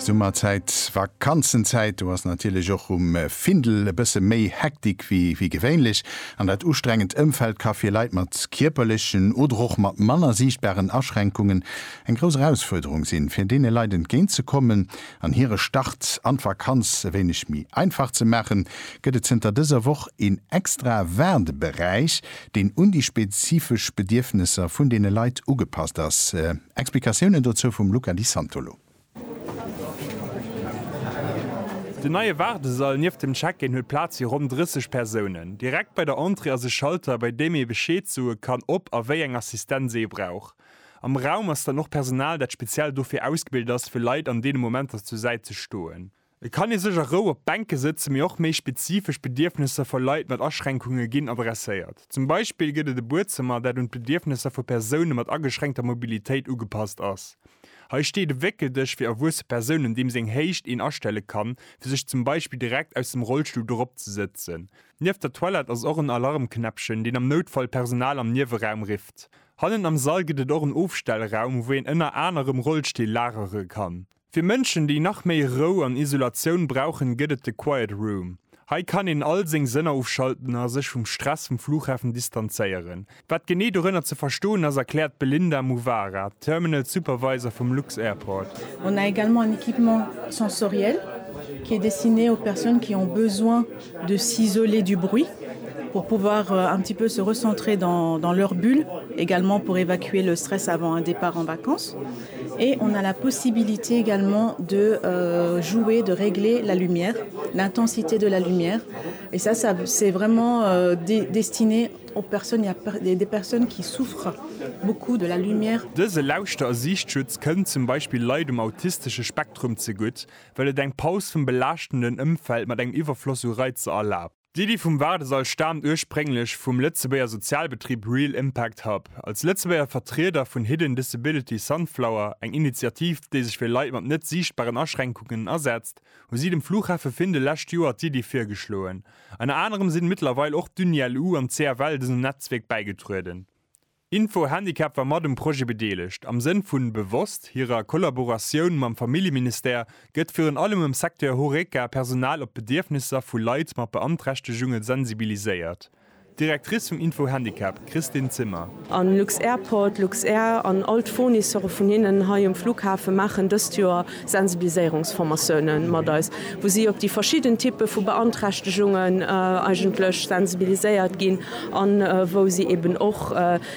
Summerzäit, Vakanzenzäit, do ass natierlech och um Findel e bësse méi Hektik wéi gewéinlech. An dat ustrengend Ëmfeld ka fir Leit mat kierperlechen oder och mat manner siichtbaren Aschränkungen eng grouss Erausfuerderung sinn. Fir deene Leit entgéint ze kommen an hire Start an d'Vakanz e wéineg méi einfach ze maachen, gëtt et zënter dëser Woch een extra Waardeberäich, deen un déi spezifesch Bedierfnesser vun deene Leit ugepasst ass. Explikatiounen dozou vum Luca Di Santolo. Den neie Waardesall nieft dem Check-in huet Plaz fir ronn 30 Persounen. Direkt bei der Entrée ass e Schalter, bei deem ee Bescheed soe kann, ob a wéi eng Assistenz ee brauch. Am Raum ass dann och Personal, dat speziell dofir ausgebilt ass, fir Leit an deene Momenter zur Säit ze stoen. Et kann ee sech a Rou op d'Bänke sëtzen, mee och méi spezifesch Bedierfnesser vu Leit mat Aschränkunge ginn adresséiert. Zum Beispill gëtt et e Buedzëmmer, dat un d'Bedierfnesser vu Persoune mat ageschränkter Mobilitéit ugepasst ass. Hei steet e Wéckeldësch fir erwuesse Persounen, deem seng Héicht een astelle kann, fir sech zum Beispill direkt aus dem Rollstull drop ze sëtzen. Nieft der Toilette ass och en Alarmknäppchen, deen am Noutfall d'Personal am Nieweraum rifft. Hannen am Sall gëtt et och en Ofstellraum, wou een ënner anerem Rollstill lagere kann. Fir Mënschen, déi nach méi Rou an Isolatioun brauchen, gëtt et de Quiet Room. Hei kann een all seng Sënner ofschalten a sech vum Stress vum Fluchhafen distanzéieren. Wat genee dorënner ze verstoen ass, erkläert d'Belinda Muvara, Terminal Supervisor vum Lux-Airport. On a également un équipement sensoriel qui est destiné aux personnes qui ont besoin de s'isoler du bruit pour pouvoir un petit peu se recentrer dans leur bulle, également pour évacuer le stress avant un départ en vacances. Et on a la possibilité également de jouer, de régler la lumière, l'intensité de la lumière et ça ça c'est vraiment destiné aux personnes, il ya des personnes qui souffrent beaucoup de la lumière. Dëse Lauschter a Siichtschutz kënnt zum Beispill Leit um autistesche Spektrum zegutt, well et eng Paus vum belaaschtenden Ëmfeld mat engem Iwwerfloss u Reizer erlaabt. D'Iddi vum Waardesall staamt ursprénglech vum Lëtzebuerger Sozialbetrib Real Impact Hub. Als Lëtzebuerger Vertrieder vun Hidden Disability Sunflower, eng Initiativ, déi sech fir Leit mat net siichtbaren Aschränkungen asetzt, hu si dem Fluchhafe Findel lescht Joer d'Iddi virgeschloen. Ënner anerem sinn mëttlerweil och d'Uni-LU an d'CFL dësem Netzwierk bäigetrueden. Info Handicap war mat um Projet bedeelegt. Am Sënn vun bewosst hirer Kollaboratioun mam Familljeministère gëtt virun allem am Secteur Horeca Personal op d'Bedierfnisser vu Leit mat Beanträchtegunge sensibiliséiert. D'Directrice vum Info Handicap, Christine Zimmer. A Lux-Airport, Luxair an all d'Fournisseuren vun hinnen hei um Flughafen maachen dëst Joer Sensibiliséierungsformatioune mat eis, wou si op déi verschidden Typpe vu Beanträchtegungen eigentlech sensibiliséiert ginn an wou si eeben och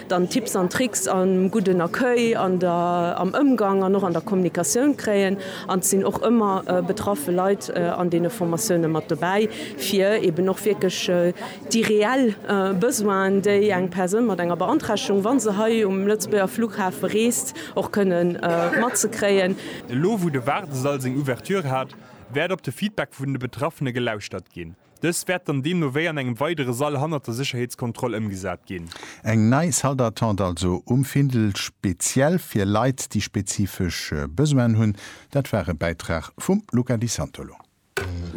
dann Tipps an Tricks am gudden Accueil, an der, am Ëmgang an och an der Kommunikatioun kréien. An et sinn och ëmmer betraffe Leit an deene Formatioune mat dobäi, fir eeben och wierklech déi reell Besoinen, déi eng Persoun mat enger Beanträchtegung, wa se hei um Lëtzebuerger Flughafe reest, Och kënnen matzekréien. Elo wou de Waardesall seng Ouverture hat, wäert op de Feedback vun de Betraffene gelauschtert ginn. Dës wäert dann deemno wéi an engem weidere Sall hannert der Sécherheetskontroll ëmgesat ginn. Eng nei Salle d'attente also um Findel, speziell fir Leit, déi spezifesch Besoinen hunn. Dat war e Bäitrag vum Luca Di Santolo.